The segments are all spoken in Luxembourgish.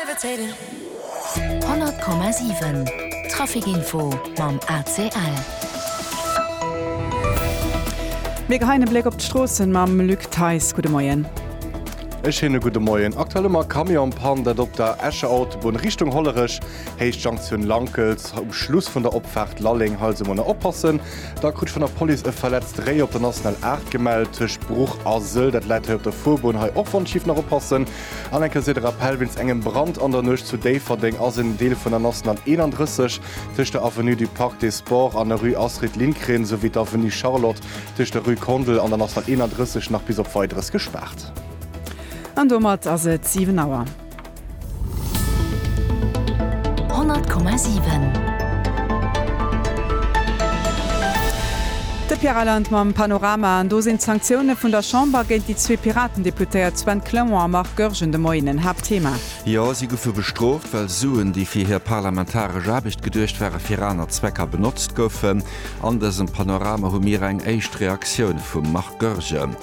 100,7 Trafic Info mam ACL. Mir geheien e Bléck op d'Stroossen mam Luc Theis. Gudde Moien. Ech hien e gudde Moien. Aktuell ëmmer Camionspann, dat op der Escher Autobunn Richtung Hollerech, Héicht Jonktioun Lankels, um Schluss vun der Opfaart Lalleng. Hei also mol nach oppassen. Da krut ech vun der Police e verletzte Réi op der National 8 gemellt, tëscht Bruch a Sëll. Dat läit hei op der Fuerbunn. Hei och Wandschief, nach oppassen. An eng Kéier de Rappell, Wéinst engem Brand an der Nuecht zu Déifferdeng ass en Deel vun der nationale 31 tëscht der Avenue du Parc des Sports an der Rue Astrid Lindgren souwéi d'Avenue Charlotte tëscht der Rue Kondel an der nationale 31 nach bis op Weideres gespaart. An domat ass et 7 Auer. 100,7. De Pierre Reyland mam Panorama. An do sinn d'Sanktioune vun der Chamber géint déi zwee Piratendeputéiert Sven Clement a Marc Goergen de Moien en Haaptthema. Jo, si goufe bestrooft, well Suen, déi fir hir parlamentaresch Aarbecht geduecht ware, fir aner Zwecker benotzt goufen. An dësem Panorama hu mir eng éischt Reaktioun vum Marc Goergen.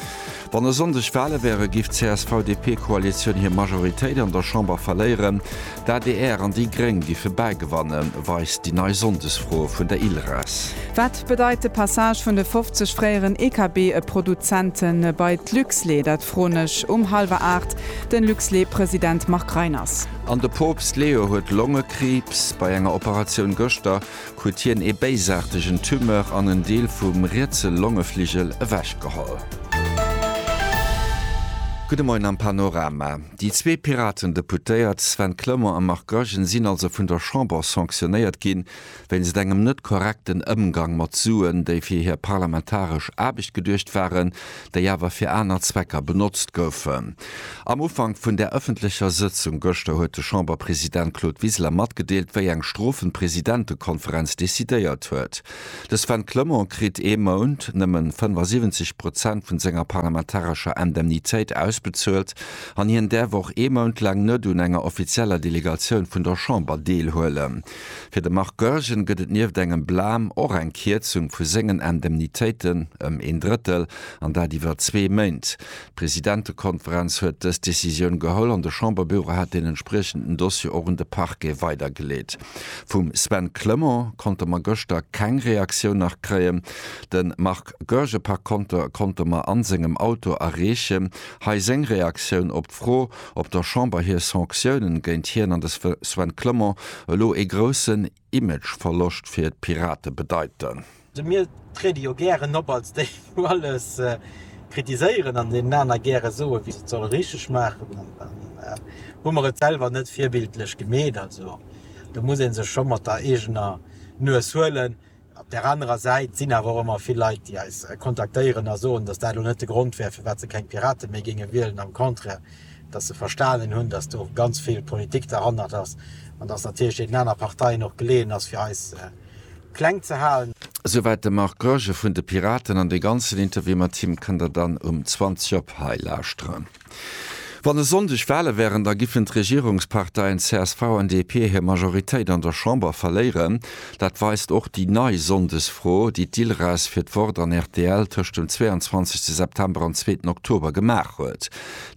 Wann e Sonndeg Wale wären, géif d'CSV-DP-Koalitioun hir Majoritéit an der Chamber verléieren. D'adr an déi Gréng géife bäigewannen, weist déi nei Sonndesfro vun der Ilres. Wat bedeit de Passage vun de 50 fréieren EKB-Produzente bei d'Luxlait? Dat froen ech um hallwer aacht de Luxlait-President Marc Reiners. An de Poopst Leo huet Longekriibs. Bei enger Operatioun gëschter huet hien ee béisaartegen Tumeur an en Deel vum rietse Longefligel ewechgeholl. Gudde Moien am Panorama. Déi zwee Piraten-Deputéiert Sven Clement a Marc Goergen sinn also vun der Chamber sanctionéiert gi wéinst engem net korrekten Ëmgang mat Suen, déi fir hir parlamentaresch Aarbecht geduecht waren, déi awer fir aner Zwecker benotzt goufen. Am Ufank vun där ëffentlecher Sëtzung gëschter huet de Chamberpresident Claude Wiseler matgedeelt, wéi eng Strofen d'Presidentekonferenz decidéiert huet. De Sven Clement kritt ee Mount nëmmen 75 Prozent vun senger parlamentarescher Indemnitéit ausbezuelt an hien däerf och ee Mount laang net un enger offizieller Delegatioun vun der Chamber deelhuelen. Fir de Marc Goergen gëtt et nieft engem Blam och eng Kierzung vu sengen Indemnitéiten ëm een Drëttel, an dat iwwer zwee Méint. D'Presidentekonferenz huet dës Decisioun geholl an de Chamberbüro hat deen entspriechenden Dossier och un de Parquet weidergeleet. Vum Sven Clement konnte mer gëschter keng Reaktioun nach kréien. De Marc Goergen par konter konnte mer a sengem Auto erreechen. Hei seng Reaktioun op d'Fro, op der Chamber hir Sanctiounen géint hien an de Sven Clement elo ee groussen Imageverloscht fir d'Pirate bedeiten. Mir triede jo gären op als déi wou alles kritiséieren an deenen aner gäre soe wéi se et solle richteg maachen an dann hu mer et selwer net virbildlech gemeet. Also do muss ee sech scho mat der eegener Nues huelen, Op där anerer Säit sinn awer och ëmmer vill Leit, déi eis kontaktéieren a soen, datt dat elo net de Grond wär, firwat se keng Piraten méi géinge wielen. Am Contraire, datt se verstanen hunn, datt do ganz vill Politik derhannert ass an datt natierlech deenen aner Parteien och geleeën ass, fir eis kleng ze halen. Esouwäit de Marc Goergen vun de Piraten. An dee ganzen Interview mat him kënnt der dann um 20 op hei lauschteren. Wann e Sonndeg Wale wären, da giffen d'Regierungsparteien csv an DP hir Majoritéit an der Chamber verléieren. Dat weist och déi nei Sonndesfro, déi d'ILRES fir d'Wort an rtl tëscht dem 22 September an zweeten Oktober gemaach huet.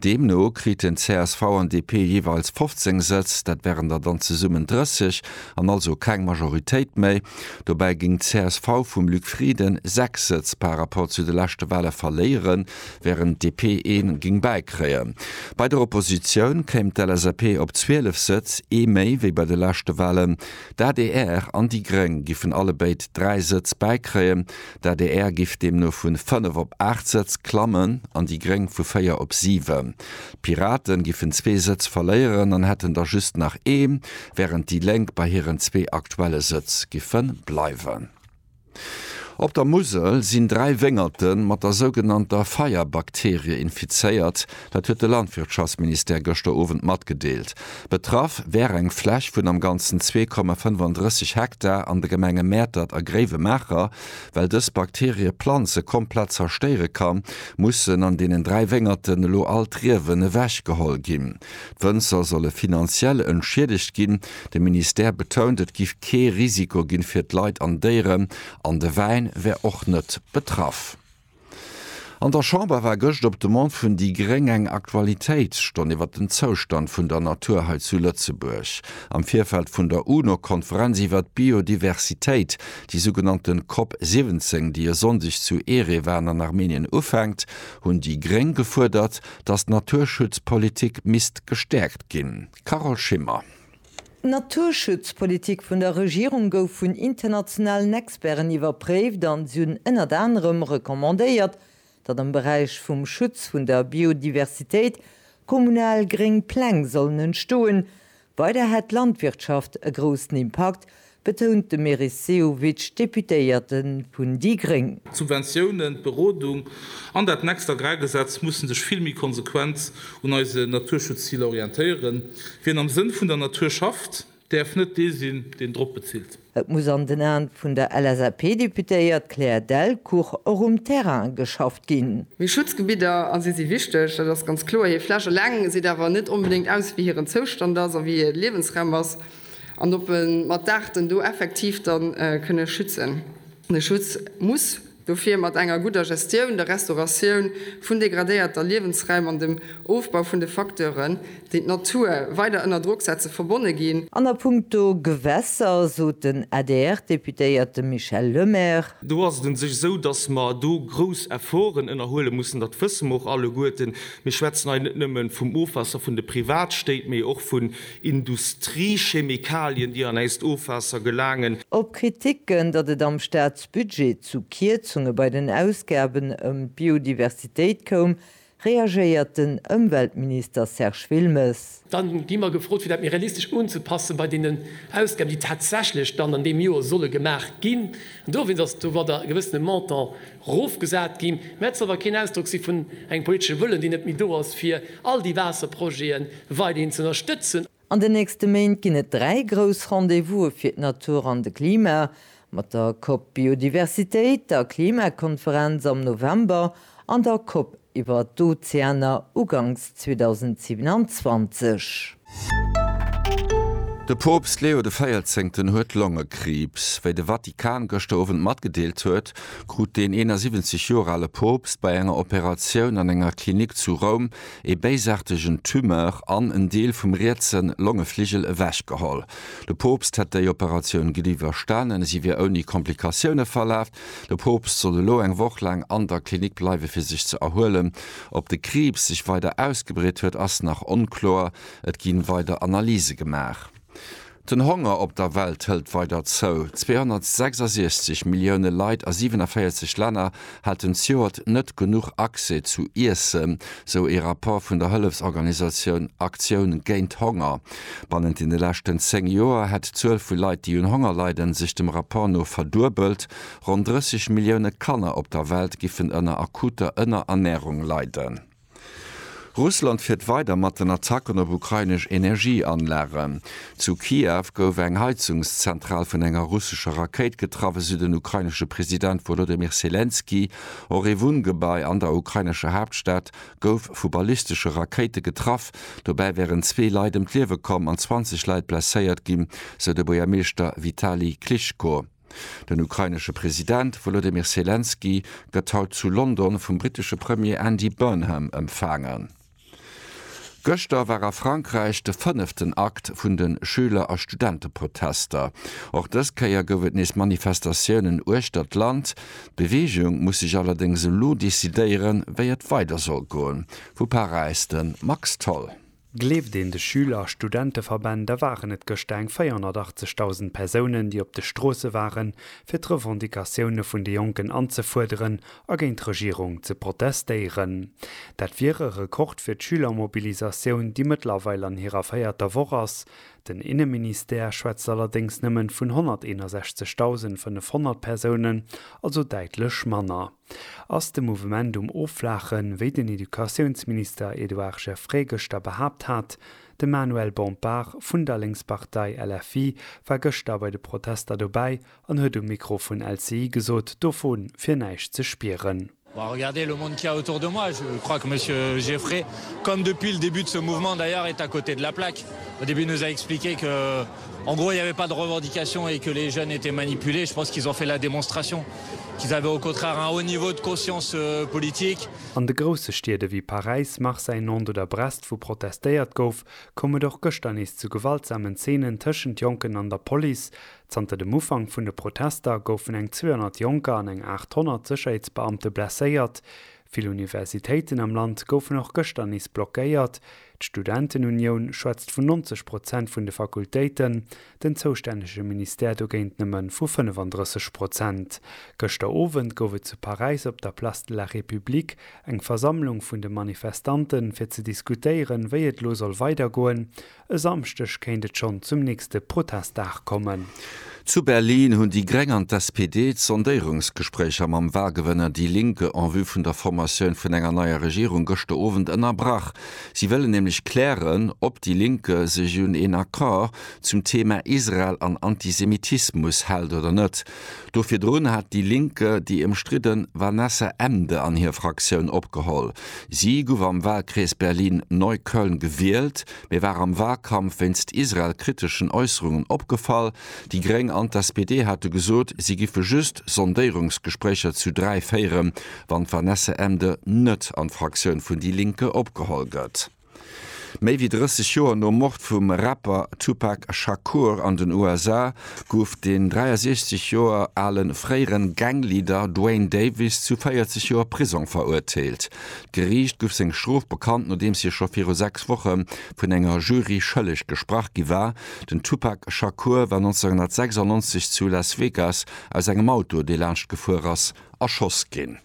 Deemno kriten csv an DP jeeweils 15 Sëtz, dat wären der dann zesummen 30, an also keng Majoritéit méi. Dobäi géing d'csv vum Luc Frieden sechs Sëtz par Rapport zu de leschte Wale verléieren. wärend d'DP een géing bäikréien. Bei der Oppositioun kéim d'LSAP op 12 Sëtz, ee méi wéi bei de leschte Wahlen. D'adr an déi Gréng giffen allebéid 3 Sëtz bäikréien. D'adr giff deemno vu 5 op 8 Sëtz klammen an déi Gréng vu 4 op 7. D'Piraten giffen zwee Sëtz verléieren an hätten der just nach ee, wärend déi Lénk bei hiren zwee aktuelle Sëtz giffe bleiwen. Op der Musel sinn dräi Wéngerte mat der sougenannter Feierbakterie infizéiert, dat huet de Landwirtschaftsministère gëschter Owend matgedeelt. Betraff wär eng Fläch vun am Ganzen zwee Komma 35 Hektar an de Gemenge Mäertert a Gréiwemaacher. Well dës Bakterie d'Planze komplett zerstéiere kann, mussen an deenen dräi Wéngerten elo all d'Riewen ewechgeholl ginn. D'Wënzer solle finanziell entschiedegt ginn. De Ministère betount, et giff kee Risiko ginn fir d'Leit an Déieren, an de Wäin wär och net betraff. An der Chamber war gëscht op Demande vun déi gréng eng Aktualitéitsstonn iwwer den Zoustand vun der Natur hei zu Lëtzebuerg. Am Virfeld vun der UNO-Konferenz iwwer d'Biodiversitéit, déi sougenannte Cop 17, déi e Sonndeg zu Erevan an Armenien ufänkt, hunn déi gréng gefuerdert, datt d'Naturschutzpolitik misst gestärkt ginn. Carole Schimmer. D'Naturschutzpolitik vun der Regierung gouf vun internationalen Experten iwwerpréift an si hunn ënnert anerem recommandéiert, datt am Beräich vum Schutz vun der Biodiversitéit kommunal gréng Pläng sollen entstoen, Weider hätt d'Landwirtschaft e groussen Impakt, betount de Meris Sehovic, Deputéierte vun déi gréng. D'Subventiounen, d'Berodung an dat next Agrargesetz musse sech vill méi konsequent un eise Naturschutzziler orientéieren. Wien am Sënn vun der Natur schafft, däerf net dee sinn, deen drop bezilt. Et muss an den Aen vun der LSAP-Deputéiert Claire Delcourt och um Terrain geschafft ginn. Mee Schutzgebidder, a si si wichteg, dat ass ganz kloer. Hir Fläch eleng seet awer net onbedéngt aus, wéi hiren Zoustand ass a wéi hir Liewensraum ass an ob e mat d'Aarten do effektiv da kënne schützen. De Schutz muss Dofir mat enger gudder Gestioun, der Restauratioun vun degradéierter Liewensraim an dem Ofbau vun de Facteuren, déi d'Natur weider ënner Drock setze, verbonne ginn. An a puncto Gewässer sot den ADR-Deputéierte Michel Lemaire. Do ass et un sech esou, datt mer do grouss Efforten ënnerhuele mussen. Dat wësse mer och alleguerten. Mir schwätzen hei net nëmme vum Ofwaasser vun de Privatstéit, mee och vun Industriechemikalien, déi an äist Ofwaasser gelaangen. Op Kriticken, datt et am Staat Budget zu Kierzunge bei den Ausgaben ëm d'Biodiversitéit koum, reagéiert den Ëmweltminister Serge Wilmes. Dann gi mer gefrot, fir dat méi realistesch unzepassen bei deenen Ausgaben, déi tatsächlech dann an deem Joer solle gemaach ginn. An dowéinst ass domadder e gewëssene Montant erofgesat ginn. Mä et soll awer keen Ausdrock si vun engem politesche Wëllen, deen net méi do ass, fir all déi Waasserprojete weiderhin z'ënnerstëtzen. An den nächste Méint ginn et dräi grouss Rendez-vouse fir d'Natur an de Klima, mat der COP Biodiversitéit, der Klimakonferenz am November an der COP iwwer d'Ozeaner uganks 2027. De Poopst Leo de Véierzéngten huet Longekriibs. Wéi de Vatikan gëschter Owend matgedeelt huet, krut deen 71 Joer ale Poopst bei enger Operatioun an enger Klinik zu Roum ee béisaartegen Tumeur an en Deel vum rietse Longefligel ewech geholl. De Poopst hätt déi Operatioun gutt iwwerstanen, si wier ouni Komplikatioune verlaf. De Poopst soll elo eng Woch laang an der Klinik bleiwe fir sech ze erhuelen. Ob de Kriibs sech weider ausgebreet huet, ass nach onkloer. Et gi weider Analyse gemaach. Den Honger op der Welt hëlt weider zou. 266 Millioune Leit a 47 Länner haten zejoert net genuch Accès zu Iessen, sou ee Rapport vun der Hëllefsorganisatioun Aktioun géint Honger. Bannent deene leschten 10 Joer hätt d'Zuel vu Leit, déi un Honger leiden, sech dem Rapport no verduebelt. Ronn 30 Millioune Kanner op der Welt giffen ënner akuter Ënnerernärung leiden. Russland fiert weider mat den Attacken op ukrainesch Energieanlagen. Zu Kiew gouf eng Heizungszentral vun enger russescher Rakéit getraff, esou den ukrainesche President Wolodymyr Selenskyj. Och ee Wunngebai an der ukrainescher Haaptstad gouf vu ballistesche Rakéite getraff. Dobäi wären zwee Leit ëm d'Liewe komm an 20 Leit blesséiert ginn, sou de Buergermeeschter Vitali Klitschko. Den ukrainesche President Wolodymyr Selenskyj gëtt haut zu London vum brittesche Premier Andy Burnham empfaangen. Gëschter war a Frankräich de fënneften Akt vun de Schüler a Studenteprotester. Och dës Kéier gouf et nees Manifestatiounen uechter d'Land. D'Beweegung muss sech allerdéngs elo decidéieren, wéi et weider soll goen. Vu Paräis de Max Tholl. Gleeft een de Schüler a Studenteverbänn, da waren et gëschter eng 480.000 Persounen, déi op de Stroosse waren, fir d'Revendicatioune vun de Jonken anzefuerderen a géint d'Regierung ze protestéieren. Dat wier e Rekord fir d'Schülermobilisatioun, déi mëttlerweil an hirer véierter Woch ass. Den Inneministère schwätzt allerdéngs nëmmen vun 161.500 Persounen, also däitlech manner. Ass de Mouvement um Offlaachen, wéi den Educatiounsminister Edouard Geffray gëschter behaapt hat? De Manuel Bompard vun der Lénkspartei LFI war gëschter bei de Protester dobäi an huet um Mikro vun LCI gesot, dovu wier näischt ze spieren. En gros, il n'y avait pas de revendications et que les jeunes étaient manipulés. Je pense qu'ils ont fait la démonstration qu'ils avaient au contraire un haut niveau de conscience politique. An de grousse Stied ewéi Paräis, Marseille, Nantes oder Brest, wou protestéiert gouf, koum et och gëschter nees zu gewaltsamen Zeenen tëschent Jonken an der Police. Zanter dem Ufank vun de Protester goufen eng 200 Jonker an eng 800 Sécherheetsbeamte blesséiert. Vill Universitéiten am Land goufen och gëschter nees blockéiert. D'Studentenunioun schwätzt vun 90 Prozent vun de Fakultéiten, den zoustännege Ministère dogéint nëmme vu 35 Prozent. Gëschter Owend gouf et zu Paräis op der Place de la République eng Versammlung vun de Manifestante fir ze diskutéieren, wéi et elo soll weidergoen. E Samschdeg kéint et schonn zum nächste Protestdag kommen. Zu Berlin hunn déi Gréng an d'SPD d'Sondéierungsgespréicher mam Walgewënner Die Linke en vue vun der Formatioun vun enger neier Regierung gëschter Owend ënnerbrach. Si wëllen nämlech klären, ob Die Linke sech un een Accord zum Thema Israel an Antisemitismus hält oder net. Do virdrun hat déi Link déi ëmstridden Vanessa Emde an hir Fraktioun opgeholl. Si gouf am Walkrees Berlin-Neukölln gewielt, mee war am Walkampf wéinst Israel-kriteschen Äusserungen opgefall. Déi Gréng an d'SPD hate gesot, si giffe just Sondéierungsgespréicher zu 3 féieren, wann d'Vanessa Emde net an d'Fraktioun vun déi Linke opgeholl gëtt. Méi wéi 30 Joer nom Mord vum Rapper Tupac Shakur an den USA gouf den 63 Joer ale fréiere Gang-Leader Duane Davis zu 40 Joer Prisong verurteelt. D'Geriicht gouf seng Strof bekannt, nodeems hie scho viru sechs Woche vun enger Jury schëlleg gesprach gi war. Den Tupac Shakur war 1996 zu Las Vegas aus engem Auto, dee laanscht gefuer ass, erschoss ginn.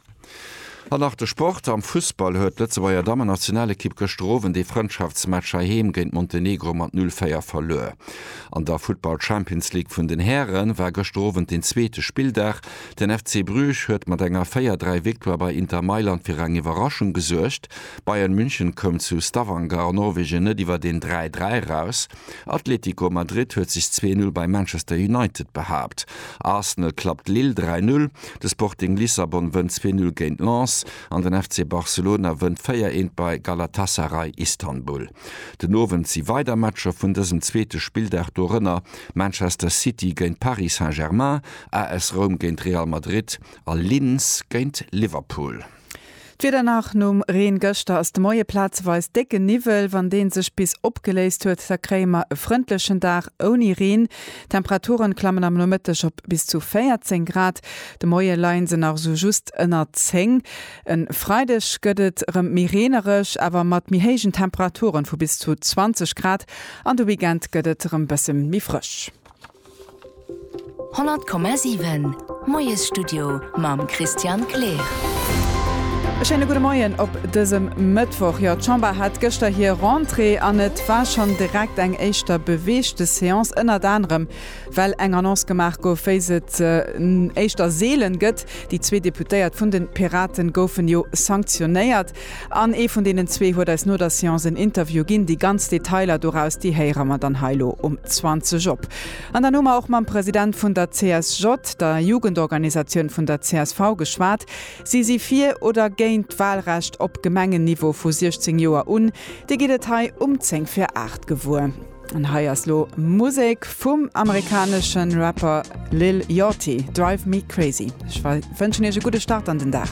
An nach de Sport, Am Fussball huet d'Lëtzebuerger Dammennationalekipp gëschter Owend ee Frëndschaftsmatch heiheem géint Montenegro mat 0, 4 verluer. An der Futtball Champions League vun den Häre war gëschter Owend den zweete Spilldag. Den FC Bruges huet mat enger 4, 3 Victoire bei Inter Mailand fir eng Iwwerraschung gesuergt. Bayern München koum zu Stavanger an Norwegen net iwwer een 3, 3 eraus. Atlético Madrid huet sech 2-0 bei Manchester United behaapt. Arsenal klappt Lille 3-0, de Sporting Lissabon wënnt 2-0 géint Lens an den FC Barcelona wënnt 4-1 bei Galatasaray Istanbul. Den Owend si weider Matcher vun dësem zweete Spilldag, dorënner Manchester City géint Paris Saint-Germain, AS Roum géint Real Madrid a Linz géint Liverpool. D'Wieder nach, Nom Reen gëschter ass de Moie plazeweis décke Niwwel. Wann dee sech bis opgeléist huet, da kréie mer e frëndlechen Dag ouni Reen. D'Temperature klammen am Nomëtteg op bis zu 14 Grad. De Moie leie se nach esou just ënner 10. E Freideg gëtt et erëm méi reenereg, awer mat méi héijen Temperature vu bis zu 20 Grad an de Weekend gëtt et erëm bësse méi frësch. 100,7 Moiesstudio mam Christian Kleer. E schéine gudde Moien op dësem Mëttwoch. Jo, d'Chamber hat gëschter hir Rentrée an et war schonn direkt eng éischter beweegte Seance, ënnert anerem well eng Annonce gemaach gouf, wéi se et éischter seelen gëtt, Déi zwee Deputéiert vun de Piraten goufen jo sanktionéiert. An ee vun deenen zwee huet eis no der Seance en Interview ginn. Déi ganz Detailer doraus, déi héiere mer dann hei elo um 20 op. An dann hu mer och mam President vun der CSJ, der Jugendorganisatioun vun der csv, geschwat. Si si fir oder géint d'Wahlrecht op Gemengenniveau vu 16 Joer un. Dir gitt et hei um 10 vir 8 gewuer. An hei ass lo Musek vum amerikanesche Rapper Lil Yachty, Drive Me Crazy. Ech wënschen iech e gudde Start an den Dag.